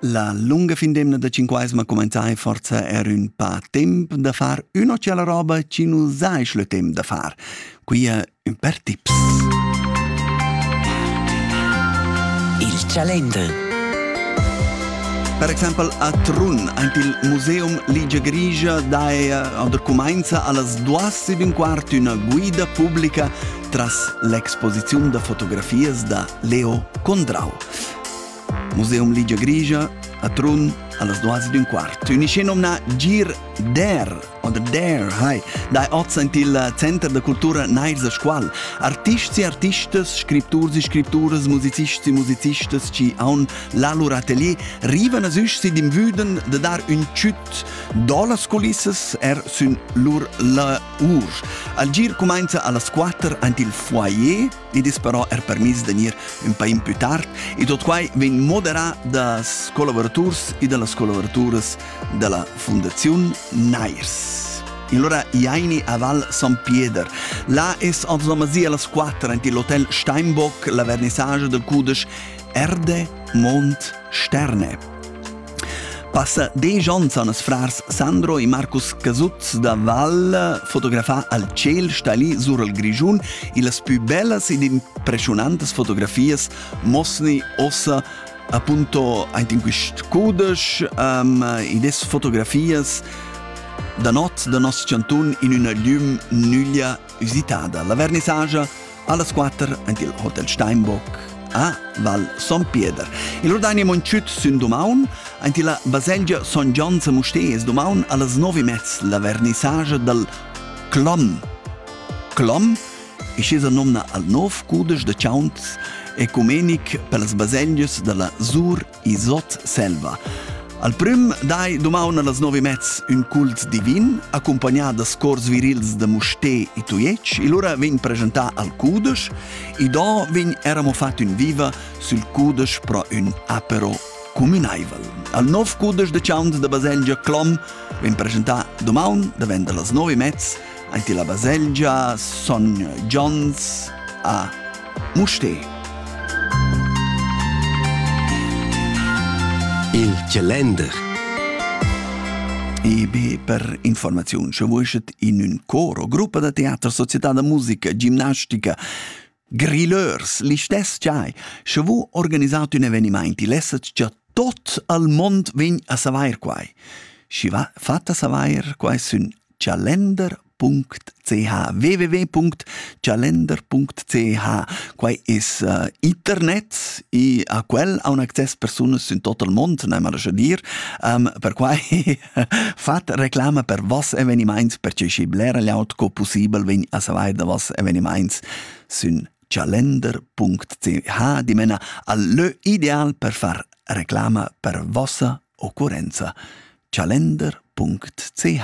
La lunga fin d'emna da cinquaisma cumenzai forza er ün pa temp da far üna tschella roba chi nu saisch le temp da far. Quia ün per tips. Il Calender Per exempel a Trun, aint il Museum Ligia Grigia daea oder cumainza a las duas ed un quart üna guida publica tras l'exposiziun da fotografias da Leo Condrau. Museum Ligia Grigia a Trun allas duas d'un quart. Unicenomna Gir Der oder Der hai dai oz il Center da cultura Neils a Scuol. Artists e artistas, scripturs e scripturas, musicists e musicistas ci haun la lur atelier rivan as üsch si dim vüden de dar ün tschüt do las culissas er sün lur la Urs. Al gir cumainza a las quatter aint il foyer, id es però er permiss da gnir ün pa impü tard ed ot quai vegn moderà das collavuraturs e da las collavoraturas da la Fundaziun Nairs. Allora Jaini a Val San Pieder. Là es avzomazì a las 4 ant l'hotel Steinbock la vernissage del cudesch Erde, Mond, Sterne. Passa desch onns han ses frars Sandro e Marcus Casuzz da Val fotografà al ciel stalì sur il Grischun e las pü bellas ed impressionantas fotografias mosni ossa appunto aint in quist cudesch um, ed es fotografias da not da nos chantun in üna glüm nüglia üsitada. La vernissagia Allas quatter ant il Hotel Steinbock a Val Son Pieder. Il Rodania Monchut sün dumaun, ant la baselgia Son Gion a Mustez dumaun allas nove mez la vernissage dal Clom. Clom e schesa nomna al nov cudesch de chaunt ecumenic per las baselgias della Zur Isot Selva. Al prüm dai dumaun allas nov e mez ün cult divin, accompagnà da scors virils da Musté e Tujetsch, e lura vegn presentà al cudesch, e do vegn era mo fat ün viva sül cudesch pro ün apero cumünaivel. Al nov cudesch de Chaunt da baselgia Clom vegn presentà dumaun davent allas nov e mez Aint illa baselgia Son Gions a Mustér. Il Gelender E be per informaziun, sche vuschet in ün cor o gruppa da teater, società da musica, gimnastica, Grilleurs, listess giai, sche vu organisat ün evenimaint, il essas già tot al mond vegn a savair quai. Schi va fatta savair quai sün calender.ch www.calender.ch Quai es uh, internet e a quel ha un access persunas in tot il mond, ne mala dir, um, per quai Fat reclama per vos evenimaints per che schi blera gliaut co pussibel vegn a savair da vos evenimaints sün calender.ch dimena al lö ideal per far reclama per vossa occurrenza calender.ch